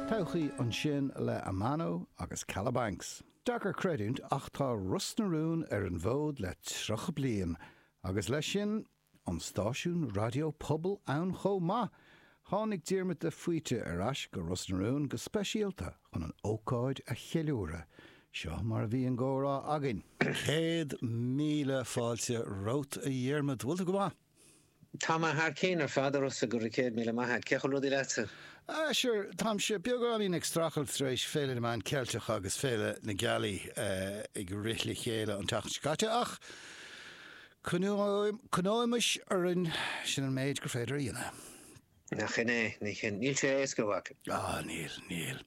Todhchaí ansin le Amano agus Kalabanx. Deacair creidiúint ach tá Ros na Rún ar an bhfód le 30 bliain agus leis sin, an stáisiún raidió pobail ann chomh maith! Tháinig Diarmuid de Faoite ar ais go Ros na Rún go speisialta chun an ócáid a cheiliúradh. Seo mar a bhí an comhrá againn. Céad míle fáilte romhat a Dhiarmuid, bhfuil tú go maith? Tá mé thar cinn ar fad, a Rossa, go raibh céad míle maith a't. Cén chaoi a bhfuil rudaí leatsa? Ah, sure, táimse beagáinín ag strachailt tar éis Féile na Meán Ceilteacha agus Féile na Gealaí ag rith le chéile an tseachtain seo caite ach coinneoimis orainn, sin an méid gur féidir a dhéanamh. Nach shin é? Sin é. Níl sé éasca, a mhac. Ah, níl, níl.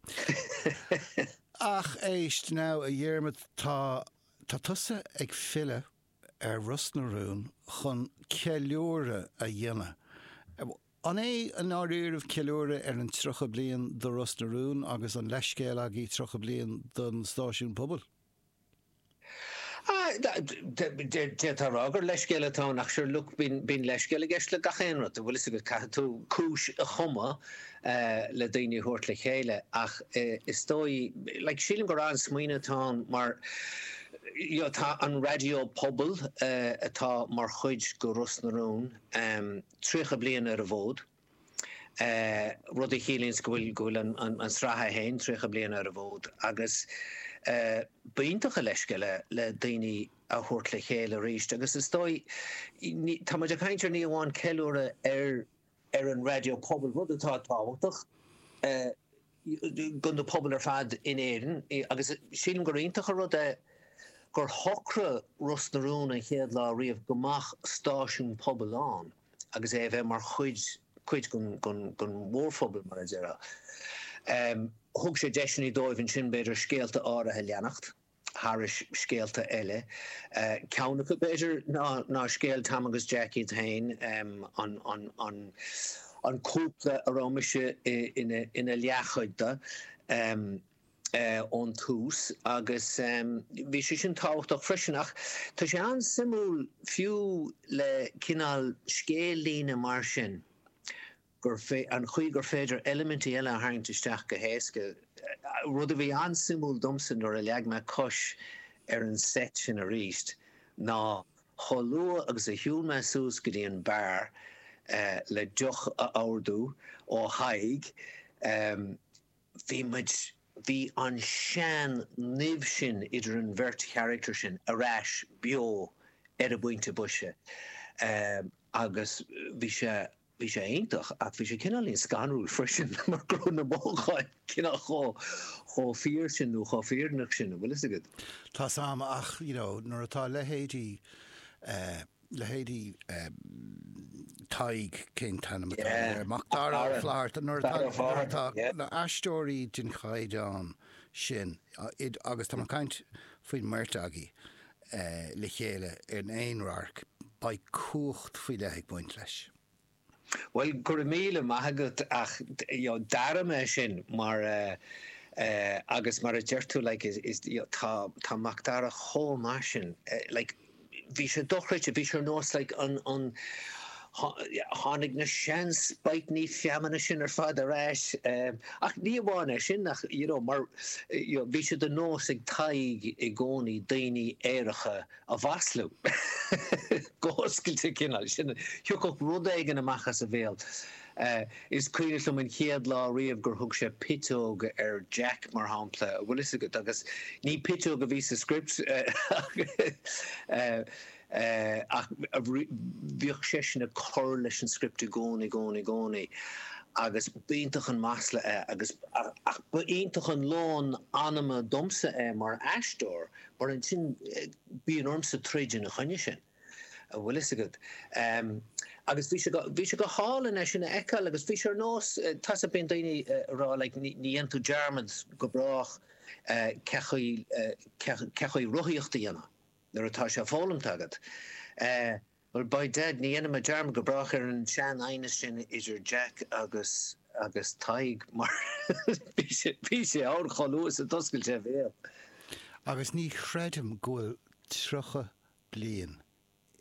Ach éist, now, a Dhiarmaid, tá, tá tusa ag filleadh ar Ros na Rún chun ceiliúradh a dhéanamh. An é i ndáiríribh ceiliúradh ar an 30 bliain do Ros na Rún agus an leithscéal agaibh 30 bliain don stáisiún pobail? D'fhéadfá a rá gur leithscéal atá ann ach sure look bíonn leithscéal i gceist le gach aon rud, an bhfuil fhios agat, caithfidh tú cúis a chumadh. le daoine a thabhairt le chéile ach is dóigh, like, sílim gur an-smaoineamh atá ann mar you know tá an raidió pobail atá mar chuid de Ros na Rún tríocha bliain ar an bhfód, rud a chiallaíonns go bhfuil, go bhfuil an tsraith fhéin tríocha bliain ar an bhfód agus b'iontach an leithscéal é, le daoine a thabhairt le chéile arís agus is dóigh, ní, tá muid ag caint ar ní amháin ceiliúradh ar ar an raidió pobail, rud atá tábhachtach do na pobail ar fad in Éirinn agus sílim gur iontach an rud é gur shocraigh Ros na Rún an chéad lá riamh go mbeadh stáisiún pobail ann agus é a bheith mar chuid, cuid den mhórphobal, mar a déarfá. Thug sé deiseanna dóibh ansin, b'fhéidir, scéalta áirithe a leanacht. thar scéalta eile. Ceann acu, b'fhéidir, ná scéal Tom agus Jack iad féin, an cúpla a raibh mise ina leathchuid de ón tús. Agus bhí sé sin tábhachtach freisin. Ach tá sé an-suimiúil fiú le cineál scéal-líne mar sin gur fearr an chaoi gur féidir eilimintí eile a tharraingt isteach go héasca. Rud a bhí an-suimiúil domsa nuair a leag mé cos ar an seit sin arís ná chomh luath agus a shiúil mé suas go dtí an beár le deoch a ordú ó Thadhg bhí muid, bhí an tsean-nimh sin idir an bheirt charachtar sin ar ais beo ar an bpointe boise agus bhí sé Bhí sé iontach ach bhí sé cineáilín scanrúil freisin mar go raibh na mothúcháin cineál chomh fíor sin nó chomh fírinneach sin, an bhfuil fhios agat. Tá 's a'm ach you know nuair atá a leithéidí eh, leithéidí eh Tadhg, cén t-ainm atá yeah. air, Macdara Ó Fátharta, nuair atá, nuair atá yeah. na aisteoirí den chaighdeán sin agus tá mé caint faoin mbeirt agaí, le chéile in aon radharc, beidh cumhacht faoi leith ag baint leis. Bhuel, go raibh míle maith agat ach d'airigh mé sin mar agus mar a deir tú like is tá Macdara chomh maith sin like bhí sé dochreidte, bhí sé ar nós like an, an, Tháinig na sean spaightní feamainne sin ar fad ar ais ach ní amháin é sin ach you know mar you know bhí sé de nós ag Tadhg i gcónaí daoiní aeracha a mhaslú go hoscailte cineál sin thiocfadh rud éigin amach as a bhéal. Is cuimhneach liom an chéad lá riamh gur thug sé piteog ar Jack mar shampla bhfuil fhios agat agus ní piteog a bhí sa script ach Ach bhíodh seisean ag cur leis an script i gcónaí, gcónaí, gcónaí agus ba iontach an masla é agus, ach ba iontach an lón anama domsa é mar aisteoir mar ansin bíonn ormsa troid ina choinne sin, an bhfuil fhios agat. Agus bhí sé, bhí sé go hálainn é sin a fheiceáil agus bhí sé ar nós, tá sa, bíonn daoine ag rá like ní dhéanfaidh tú dearmad go brách cén chaoi, cén chaoi rothaíocht a dhéanamh. Nuair atá sé foghlamtha agat, eh, well, by Dad, ní dhéanfaidh mé dearmad go brách ar an sean aighneas sin idir Jack agus, agus Tadhg, mar bhí sé, bhí sé ann chomh luath is a d'oscail sé a bhéal. Agus ní chreidim go bhfuil tríocha bliain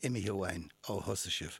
imithe uainn ó thosaigh sibh,